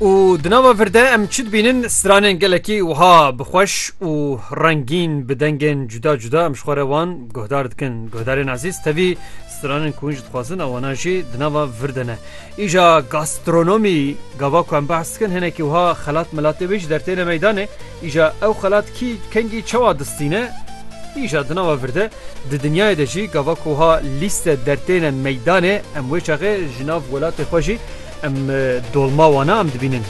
û di nava vir de em çi dibînin stranên gelekî wiha bixweş û rengîn bi dengên cuda cuda em ji xwe re wan guhdar dikin guhdarên ezîz tevî stranên ku hûn ji dixwazin ewana jî di nava vir de ne îja gastronomî gava ku em behs dikin hinekî wiha xelat milatê wê ji dertêne meydanê Îja ew xelat kî kengî çawa distîne? Îja di nava vir de, di dinyayê de jî gava ku ha lîste dertêne meydanê em wê çaxê ji nav welatê xwe jî em dolma wana em dibînin.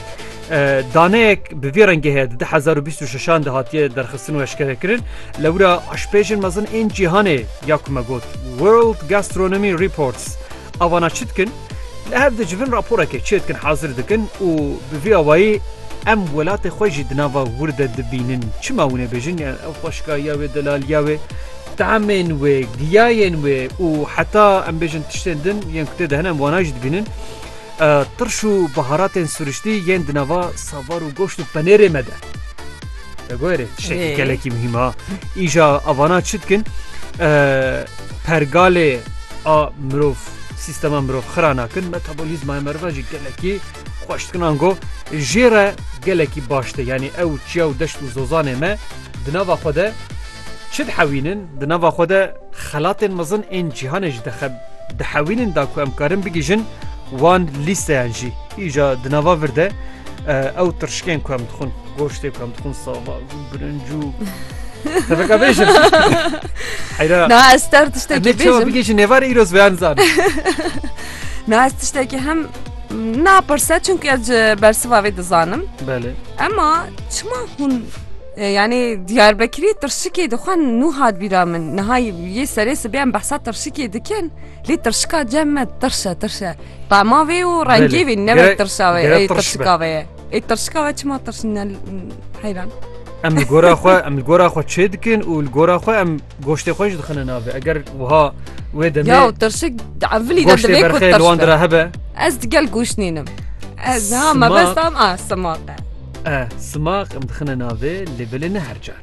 Daneyek bi vî rengê heye di du hezar û bîst û şeşan de hatiye derxistin û eşkerekirin. Lewra eşpêjên mezin ên cîhanê ya ku me got World Gastronomy Reports Avana çi dikin? Li hev dicivin raporekê çê dikin hazir dikin û bi vî awayî em welatê xwe jî di nava wir de dibînin. Çima wî nebêjin yan ew xweşikayiya wê, delaliya wê, teamên wê, giyayên wê û heta em bêjin tiştên din yên ku tê de hene em wana jî dibînin. Tirş û biharatên siriştî yên di nava savar û goşt û penêrê me de. Degore tiştekî gelekî muhîm a. Îja avana çi dikin? Pergalê a mirov sîstema mirov xira nakin metabolîzmaya meriva jî gelekî xweş dikin ango jê re gelekî baş de yanî ew çiya û deşt û zozanê me di nava xwe de çi dihewînin di nava xwe de xelatên mezin ên cîhanê jî dixeb dihewînin da ku em karin bigihîjin wan lîsteyan jî îja di nava vir de ew tirşikên ku em dixwin. Goştê kam dixwin sava birinc û Tebeka bêjim. Heyra. Na ez ter tiştekî bêjim. Ne çawa bigêjin nêvarê îro ez beyan zan. Na ez tiştekî hem napirse çünkü ez ji bersiva vê dizanim. Belê. Ema çima hûn e, yani Diyarbekirê tirşikê dixwe nû hat bîra min. Niha yê serê sibê em behsa tirşikê dikin. Lê tirşika cem me tirşe tirşe. Qema vê û rengê vê ne ve tirşa vê tirşika vê ye. Ê tirşika we çima tirşin ne heyran. Em li gora xwe em li gora xwe çê dikin û li gora xwe em goştê xwe ji dixine navê eger wiha wê demê Ya tirşik evlî de goştê divê ku berxê li wan tirşik. re hebe Ez digel goş nînim. Ez ha Simak. mebestam a simak e. e simaq em dixine navê lê belê ne her car.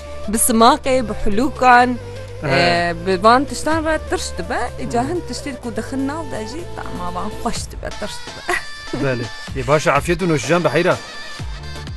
Bi simaqê, bi hulûkan, bi van tiştan re tirş dibe. Îca hin tiştên ku dixin nav de jî tama wan xweş dibe, tirş dibe. Belê. Ê baş e afiyet û noşijan bi heyra.